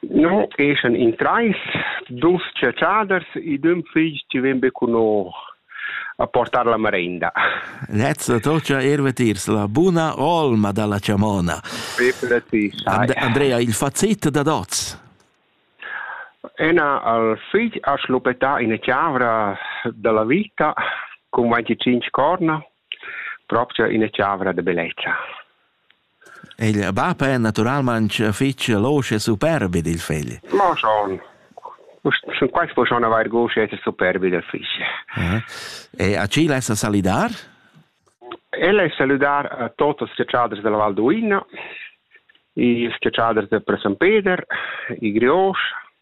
No eschan in trais, dus chatschaders ed ün figl chi ven be cun nos a portar la marenda. Nezza tocha erve tirs la buna olma dalla chamona. Andrea, il fazzit da dots. Ena al figl ha schlupetà ina chavra dalla vita con 25 corna, propria ina chavra de bellezza. Il bap è naturalmaing fich losch e superb ed il figl? Ma schon. Schon quaist po schon avair gust d'esser superb ed il figl. Aha. E a chi lessa salidar? El es salüdar a tots ils schiacciaders della Val d'Uina, i schiacciaders per San Peder, i Griosch,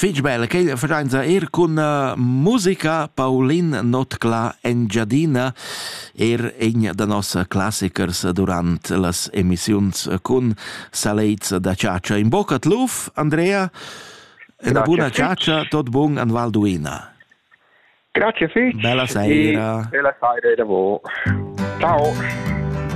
Fich bel quel vacanza er cun uh, musica Paulin Notcla Engiadina, er in da nos classichers durant las emissiuns cun salets da ciacia. In bocca tluf, Andrea, e una buona ciacia, tot bun an Valduina. Grazie fich. Bella saira. E, bella saira da voi. Ciao.